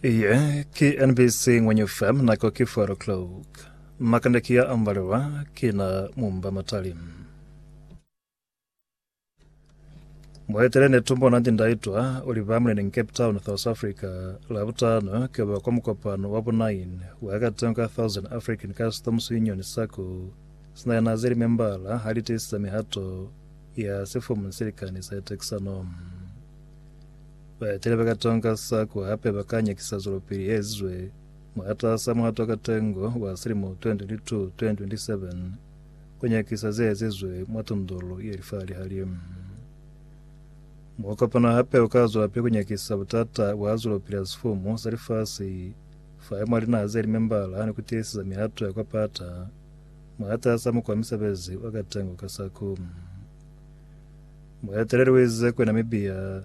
Iye ki NBC Ngwenyu FM nako ki 4 o'clock. Makande ki ya ambaliwa ki na mumba matali. Mwaitele ne tumbo nanti ndaitwa uli ba muleni in Cape Town, South Africa, la butano ke ba kwa mukopano wa bu 9 wa ka tengo ka 1000 African Customs Union sako sina yana zeli membala ha li tisisa mihato ya sifumu silikani sa tekisano. Baetele ba katonga sa ku hape ba ka nyakisa zwelopili ye ezizwe mwataasa muhato wa katengo wa silimo 2022-2027 ku nyakisa ze ezizwe mwa tundulu ye lifahali-hali. Mukopano hape u ka zwelapili ku nyakisa butata bwa zwelopili ya sifumu sa lifasi fa mwa linaha ze li membala ni ku tiiseza mihato ya kwa pata mwataasa mukwa misebezi wa katengo ka sa ku Mueteleli ze kwe Namibia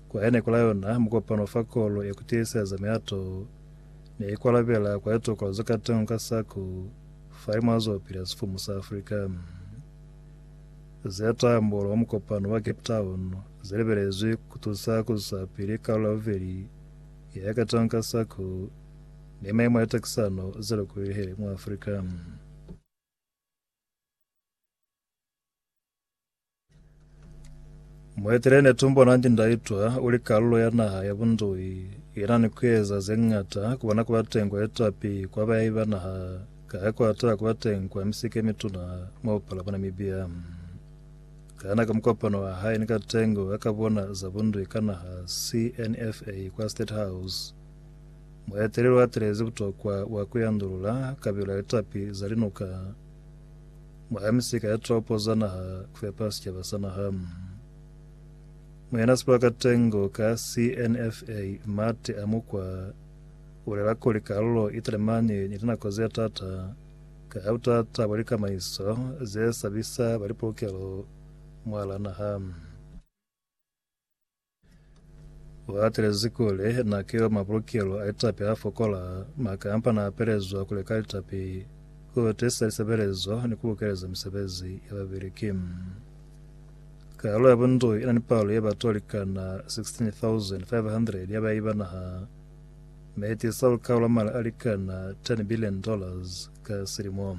kwa ene kula yona mukopano fa kolo ya kutiiseza miato ne ikwalabela kwa litokolo ze katengo ka saku fa limo azopili a sifumu sa Africa ze tambolo mwa mukopano wa Cape Town ze libelezwi kutusa kuisa pili kalulo ya bubeli ya ya katengo ka saku ni maimo a litakisano ze lokolilihile mwa Africa. Muetele netumbo Nandi Ndaitwa uli kalulo ya naha ya Bundui ina ni kueza zeng'ata kubona kuba teng kwa litapi kwa bayahi ba naha kaha kwata kuba teng kwa misike mituna mwa bupala bwa Namibia. Kana ka mukopano wa hae ni Katengo wa Kabona za Bundui ka Naha, CNFA, kwa State House, mueteleli watelezi butokwa bwa kuyandulula kabilo ya litapi za linuka Mwaha misika ya topo za naha kufepa sicaba sa naha. Muyana sibaka tengo ka CNFA Mate a Mukwa ubulela kuli kalulo italemani ni linako ze tata ka ha butata bwa likamaiso ze sabisa ba lipulukelo mwala naha. Wa atelezi kuli na ki yo mabulukelo a litapi a fokola, mwa kampa na apelezwa ku leka litapi, ku tisa lisebelezo ni ku bukeleza misebezi ya babeleki. Kalulo ya bundui ina ni palo ye batu ba likana 16,500 ya bayi ba naha, mi itisa lukau la mali a likana $10 billion ka silimo.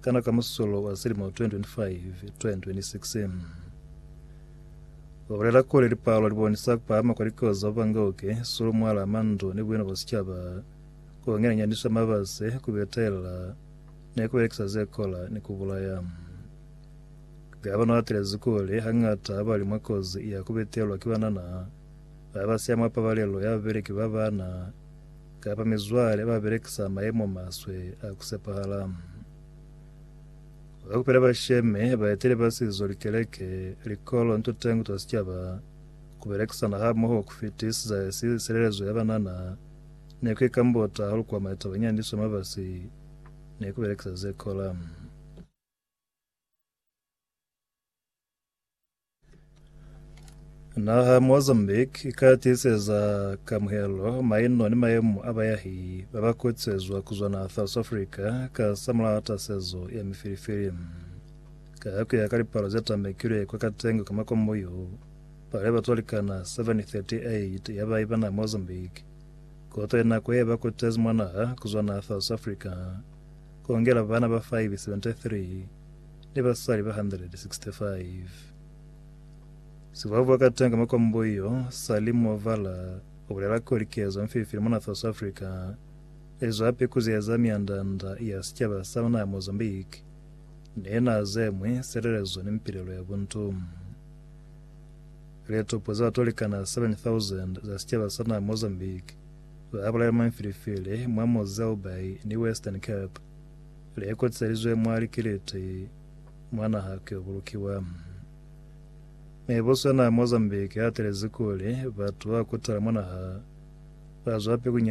Kana ka musolo wa silimo 2025-2026 wa bulela kuli lipalo li bonisa ku pahama kwa likozi za bubangauke, sulu, mwala, mandu ni buena bwa sicaba, ku ngenanyaniswa mabase, ku betelela ni ku belekisa ze kola ni ku bulaya? Gavana u atelezi kuli hañata ba li mwa kozi ya ku betelwa ki banana ba ba siya mwa pabalelo ya babeleki ba bana, Kapa mizwale ba belekisa mayemo maswe a ku sepahala. Kwa kupela bashemi, baeteli ba sizo, likeleke, likolo ni tutengo twa sicaba, ku belekisana hamoho ku fitisiza silelezo ya banana ne ku ikambota hahulu kwa maitaba nyandiswe mabasi ni ku belekisa ze kola. Naha ya Mozambique i ka tiiseza kamuhelo, maino ni mayemo a bayahi ba ba kutisezwa ku zwa naha ya South Africa ka sa mulaha tasezo ya mifilifili. Ka ku ya ka lipalo ze tambekilwe kwa Katengo ka makombo yo, palo ya batu ba likana 738 ya ba iba naha ya Mozambique koto ye nako ye ba kutezi mwa naha ku zwa naha ya South Africa, ku ngela bana ba 573 ni basali ba 165. Sivuavu wa katanga makwambo yo, Sally Muovala, u bulela kuli kezo mfilifili mona South Africa i zwa hape ku ziyeza mianda-nda ya sicaba sa naha ya Mozambique ni ye naha ze ñwi, silelezo ni mpilelo ya buntu. Litopo za batu ba likana 7,000 za sicaba sa naha ya Mozambique ba bulailwe mwa mfilifili mwa Mozilbaai ni Western Cape. Le kotiselizwe mwa likiliti mwa naha ki bulukiwa. Meboswana Mozambique atelezi kuli batu ba kutala mwa naha ba zwa pekunyana.